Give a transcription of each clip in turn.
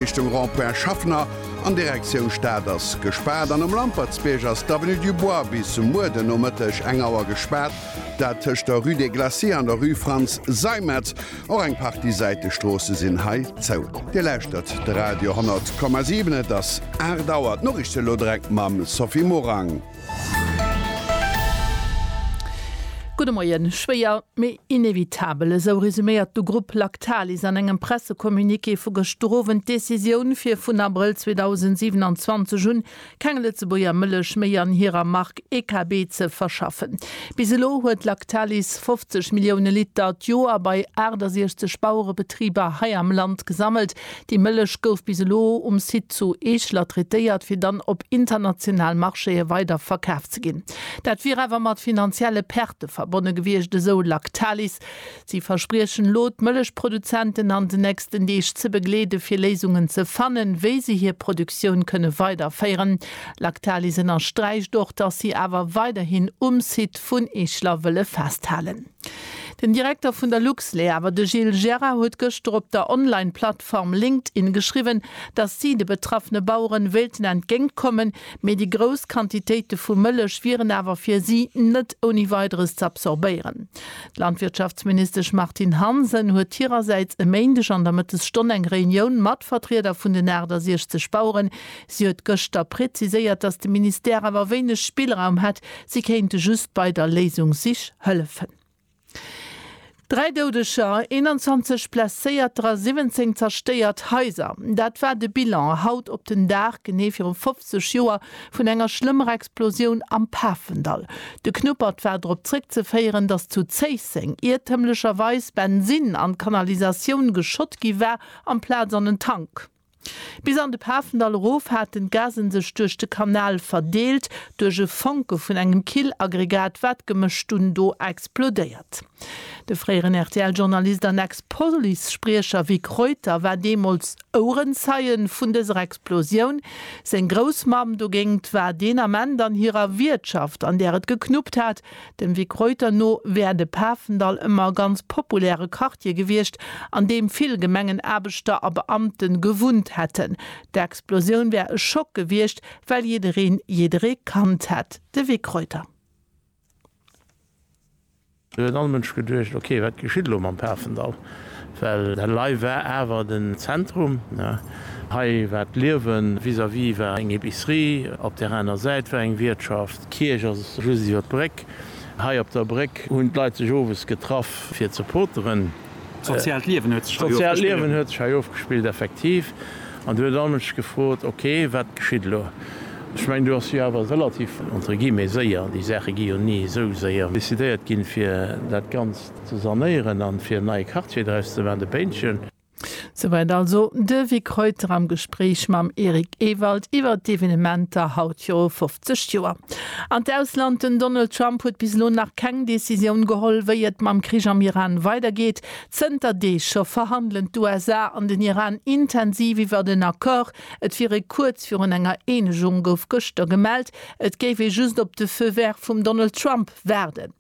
Richtung Rond-Point Schaffner an Direktioun Stad ass gespaart an um Lampertsbierg ass d'Avenue du Bois bis muer den Nomëtteg eng Auer gespaart. Dat tëscht der Rue des Glaciers an der Rue Franz Seimetz. Och eng Partie Säitestroosse sinn hei zou. Dir lauschtert de Radio 10,7, et ass 8 Auer. D'Noriichten elo direkt mam Sophie Morang. Gudde Moien. Schwéier, mee inevitabel, esou resuméiert de Grupp Lactalis an engem Pressecommuniqué vu gëschter Owend d'Decisioun, fir vun Abrëll 2027 un keng Lëtzebuerger Mëllech méi an hirer Mark EKB ze verschaffen. Bis elo huet Lactalis 50 Millioune Liter d'Joer bei 68 Bauerebetriber hei am Land gesammelt, Déi Mëllech gouf bis elo um Site zu Eeschler traitéiert, fir dann op international Marchéë weider verkaf ze ginn. Dat wier awer mat finanzielle Perte verbonne gewiescht, esou Lactalis. Si verspriechen elo, d'Mëllechproduzenten an den nächsten Deeg ze begleede fir Léisungen ze fannen, wéi se hir Produktioun kënne weiderféieren. Lactalis ënnersträicht och, datt si awer weiderhin um Site vun Eeschler wëlle festhalen. Den Direkter vun der Luxlait awer, de Gilles Gerard, huet gëschter op der Online-Plattform LinkedIn geschriwwen, datt si de betraffene Baueren wéilten entgéint kommen, mee déi grouss Quantitéite vu Mëllech wieren awer fir si net ouni Weideres ze absorbéieren. D'Landwirtschaftsministesch Martine Hansen huet hirersäits e Méindeg an der Mëttesstonn eng Reunioun mat Vertrieder vun den 68 Baueren. Si huet gëschter preziséiert, datt de Ministère awer wéineg Spillraum hätt, Si kéinte just bei der Léisungssich hëllefen. Dräi Doudeger, 21 Blesséierter a 17 zerstéiert Haiser, dat war de Bilan haut op den Dag genee viru 50 Joer vun enger schlëmmer Explosioun am Pafendall. De Knuppert war drop zréckzeféieren, datt zu Zéisseng iertëmlecherweis Bensin an d'Kanalisatioun geschott gi war amplaz an en Tank. Bis an de Pafendall erof haten d'Gasen sech duerch de Kanal verdeelt, duerch e Fonke vun engem Killaggregat war d'Gemësch dunn do explodéiert. De fréieren RTL-Journalist an Ex-Police-Spriecher Vic Reuter war deemools Ouerenzeie vun dëser Explosioun. Seng Groussmamm dogéingt war deen Ament an hirer Wiertschaft, an där et geknuppt hat, Dem Vic Reuter no wär de Pafendall ëmmer e ganz populäre Quartier gewiescht, an deem vill Gemengenaarbechter a Beamte gewunnt hätten. D'Explosioun wär e Schock gewiescht, well jiddereen jidderee kannt hätt. De Vic Reuter. Do huet all Mënsch geduecht, ok, wat geschitt elo mam Pafendall? Well dat Lei war awer den Zentrum. Hei war d'Liewen. Vis-à-vis war eng Epicerie, op där aner Säit war eng Wiertschaft. D'Kierch ass just iwwer d'Bréck. Hei op der Bréck hunn d'Leit sech owes getraff fir ze poteren. D'soziaalt Liewen huet sech hei ofgespillt. D'soziaalt Liewen huet sech hei ofgespillt, effektiv. An du hues all Mënsch gefrot, ok, wat geschitt elo? Ech mengen, do ass jo awer relativ, entre guillemets, séier, déi Saache gi jo ni esou séier decidéiert ginn, fir dat Ganzt. Ze sanéieren an fir en neie Quartier draus ze man, de Péintchen. Souwäit also de Vic Reuter am Gespréich mam Eric Ewald iwwert d'Evenementer haut viru 50 Joer. An d'Ausland, Den Donald Trump huet bis elo nach keng Decisioun geholl, wéi et mam Krich am Iran weidergeet. Zënter Deeg scho verhandelen d'USA an den Iran intensiv iwwert en Accord. Et wier ee kuerz virun enger Eenegung, gouf gëschter gemellt. Et géif ee just op de Feu vert vum Donald Trump. Waarden.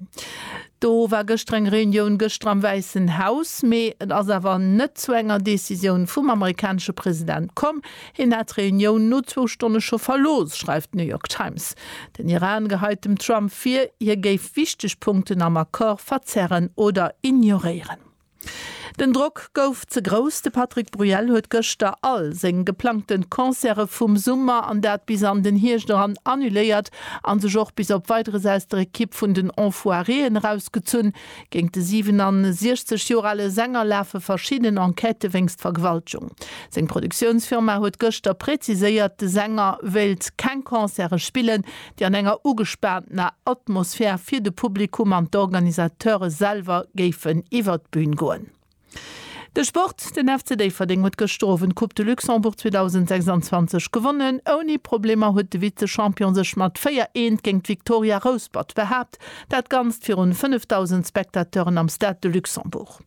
Do war gëschter eng Reunioun, gëschter am Wäissen Haus, mee et ass awer net zu enger Decisioun vum amerikanesche President komm. Hien hat d'Reunioun no zwou Stonne scho verlooss, schreift d'New York Times. Den Iran geheit dem Trump vir, hie géif wichteg Punkten am Accord verzerren oder ignoréieren. Den Drock gouf ze grouss, de Patrick Bruel huet gëschter all seng geplangten Concerte vum Summer an dat bis an den Hierscht eran annuléiert an sech och bis op Weideres aus der Equipe vun den Enfoiréen erausgezunn. Géint de 67 Joer ale Sänger lafe verschidden Enquêtë wéinst Vergewaltgung. Seng Produktiounsfirma huet gëschter präziséiert, de Sänger wéilt keng Concerte spillen, déi an enger ugespaantener Atmosphär fir de Publikum an d'Organisateure selwer géifen iwwert d'Bühn goen. De Sport, Den FC Déifferdeng huet gëschter Owend d'Coupe de Luxembourg 2026 gewonnen. Ouni Problemer huet de Vize-Champion sech mat 4, Eent géint d'Victoria Rouspert behaapt, dat Ganzt virun 5.000 Spectateuren am Stade de Luxembourg.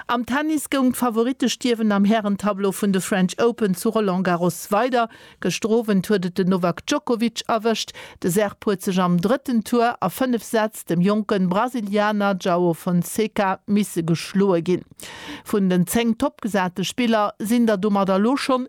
Am Tennis goung d'Favorittestierwen am Hären-Tableau vun de French Open zu Roland Garros weider. Gëschter Owend huet et den Novak Djokovic erwëscht. De Serb huet sech am drëtten Tour a fënnef Sätz dem jonke Brasilianer Joao Fonseca misse geschloe ginn. Vun den 10 toppgesate Spiller sinn der domat elo schonn